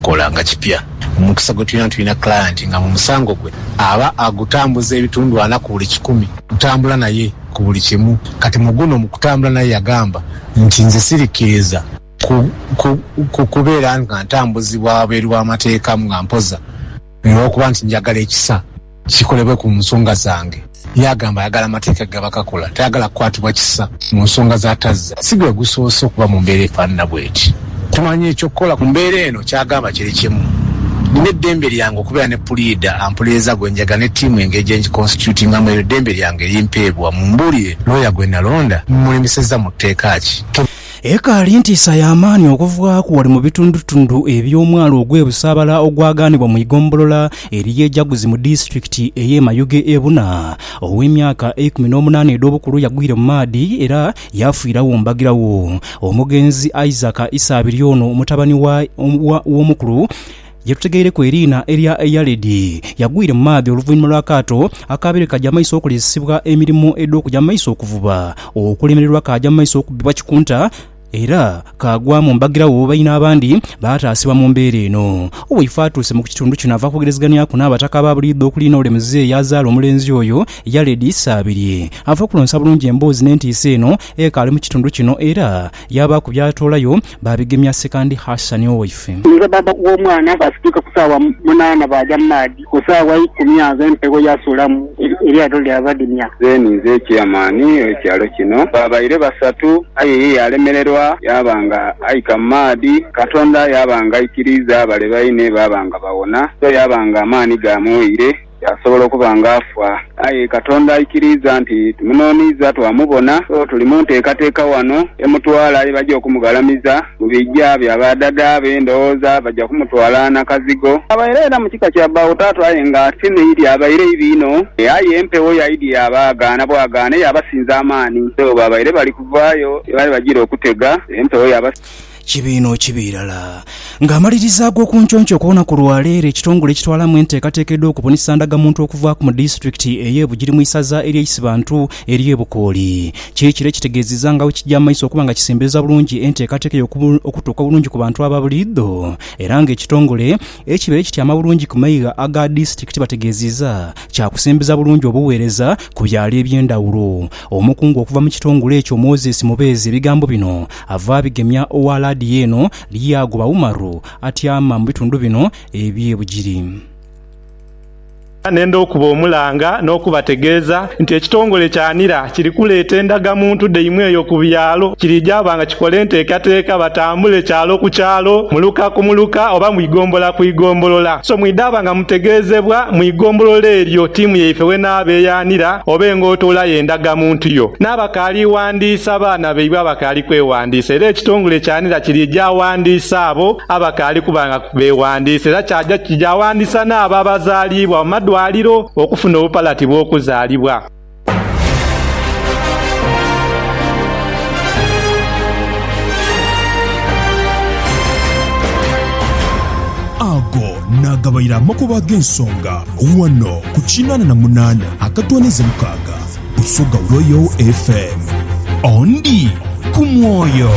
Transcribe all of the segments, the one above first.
Kola nga kipya. Omukisa gwe tulina, tulina client nga mu musango gwe aba agutambuza ebitundu ana ku buli kikumi. Kutambula naye ku buli kimu. Kati mu guno mu kutambula naye yagamba nti, Nze sirikkiriza ku, ku, ku kubeera nga ntambuzibwa wabweru w'amateeka nga mpoza, olw'okuba nti njagala ekisa. kikolebwe ku nsonga zange. Yaagamba ayagala amateeka ge gaba kakola, tayagala kukwatibwa kisa mu nsonga z'atazza. Si gwe gusoose okuba mu mbeera efaanana bw'eti. Tumanya eky'okukola ku mbeera eno, ky'agamba kiri kimu, Nnina eddembe lyange okubeera ne puliida ampuliiriza gwe njagala ne ttiimu engeri gye ngikonsityutingamu. Eryo ddembe lyange erimpeebwa. Mumbuulire, looya gwe nalonda mmulimisizza mu tteeka ki? Ekaali ntiisa ya maani okuvaaku ghale mu bitundutundu eby'omwalo ogw'e Busaabala ogwagaanibwa mu igombolola ery'e Jaguzi mu disitulikiti ey'e Mayuge Ebuna ow'emyaka eikumi n'omunaana edh'obukulu yagwire mu maadhi era yaafiiragho mbagiragho. Omugenzi Isaac Isaabirye ono mutabani w'omukulu Ye tutegeireku eriina erya Yaredi, yagwire mu maadhi oluvainhuma lwa kaato akaabaire kaja mu maiso okolesesebwa emirimo edh'okuja mu maiso okuvuba okulemererwa kaaja mu maiso okubbibwa kikunta era kaagwa mu mbagiragho baine abandi baataasibwa mu mbeera eno. Owaife atuuse mu ku kitundu kino ava kwogerezeganyaku n'Abataka aba buliidho okuli n'ole Muzei eyazaala omulenzi oyo, Yaredi Sabirye. Ava kulonsa bulungi emboozi n'entiisa eno ekaali mu kitundu kino era Yaabaaku by'atoolayo, baabigemya Sekandi Hasani owaife. Nze bbaabba w'omwana. Baasituka ku saawa munaana baaja mu maadhi. Ku saawa ikumi agho empewo yaasuulamu, eryato lyabadimya. Nze ninze Chairman w'ekyalo kino. Baabaire basatu aye ye yaalemererwa yaaba nga aika mu maadhi. Katonda yaaba nga aikiriiza bale baine baaba nga bawona. So yaaba nga amaani gaamuwaire. Yaasobola okuba nga afa. Aye Katonda aikiriiza nti tumunooniiza twamubona. So tuli mu nteekateeka wano emutwala ye baja okumughalamiza. Mu bigya bya ba dada be ndowooza baja kumutwala na kazigo. Abaire era mu kika kya bba wo taata aye nga ate ni idi abaire ibi inho. Aye empewo ya idi yaabaagaana bwagaane yaabasinza amaani. So baabaire bali kuvaayo ye baali bajiire okutega, empewo yaba. Kibiino ki birala. Nga amaliriza ag'okunconco okw'olunaku lwa leero, ekitongole ekitwalamu enteekateeka edh'okubunisa ndagamuntu okuvaaku mu disitulikiti ey'e Bugiri mu isaza erye Isibantu erye Bukooli kiri kiro ekitegeezizza nga bwekigya mu maiso okuba nga kisembereza bulungi enteekateeka eyo okutuuka bulungi ku bantu aba buliidho era nga ekitongole ekibeere kityama bulungi ku maigha aga disitulikiti bategeezizza kyakusembeza bulungi obuweereza ku byaalo eby'endawulo. Omukungu okuva mu kitongole ekyo Moses Mubeezi ebigambo bino Ava abigemya owa laadiyo eno lyagoba Umaru atyama mu bitundu bino eby'e Bugiri. Ne ndha okuba omulanga n'okubategeeza nti ekitongole kya nira kiri kuleeta endagamuntu dhaimwe eyo ku byalo. Kirigyaba nga kikola enteekateeka batambule kyalo ku kyalo, muluka ku muluka oba mu igombolola ku igombolola. So mwidhaba nga mutegeezebwa mu igombolola eryo tiimu yaife w'enaaba eya nira oba engootoola y'endagamuntu yo. Naabakaali. Kyawandiisa abaana baibwe abakaali kwewandiisa, era ekitongole kya nira kiri gyawandiisa abo abakaali kuba nga bewandiisa, era kyaja kigyawandiisa n'abo abazaaliibwa mu madwaliro okufuna obupalati bw'okuzaalibwa. Ago naagabaire amakubo ag'ensonga ghano ku kinaana na munaana akatooneza mukaaga. Busoga Royal FM. Ondi ku mwoyo.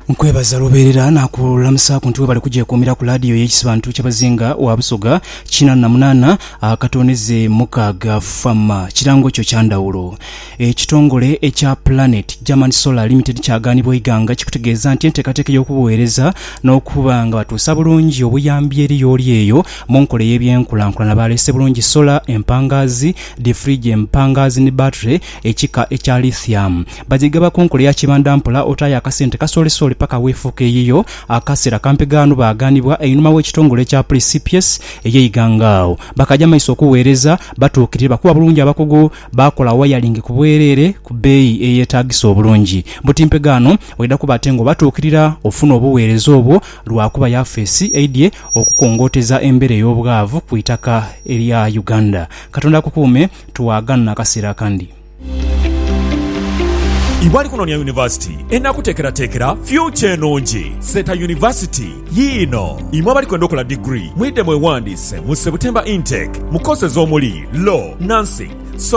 nkwebaza lubeerera nakulamusaaku nti webale kugyekuumira ku laadiyo y'ekisibantu ky'abazinga wa busoga kinaana na munaana akatondeze mukaaga fama kirango kyo kyandawulo Ekitongole ekya Planet German Solar Limited kyagaanibwa eighanga ekikutegeeza nti enteekateeka ey'okubugheereza n'okuba nga batuusa bulungi obuyambi eri y'oli eyo mu nkola ey'ebyenkulankulana baleese bulungi sola empangaazi, difirigi empangaazi ni battery ekika ekya lithium. Bagyegaba ku nkola eya kibandampola otaayo akasente kasoolesoole paka weefuuka eyiyo. Akaseera kampi ghano baagaanibwa einhuma w'ekitongole ekya Precipies ey'eighanga agho bakaja maiso okugheereza batuukirire bakuba bulungi abakugu Baakola wayaringi ku bwereere ku bbeeyi eyeetaagisa obulungi. Buti mpegaano oidha kuba ate ng'obatuukirira ofuna obuweereza obwo lwakuba yafeesi eidhye okukongooteza embeera ey'obwavu ku itaka erya Uganda. Katonda akukuume twaganha akaseera akandi. Iwe ali kunoonia yunivasiti enakuteekerateekera fyucha enungi, Seeta University yiino. Imwe abali kwenda okola diguli, mwidhe mwewandiise mu September Intake mu courses omuli, Law, Nursing, Soft.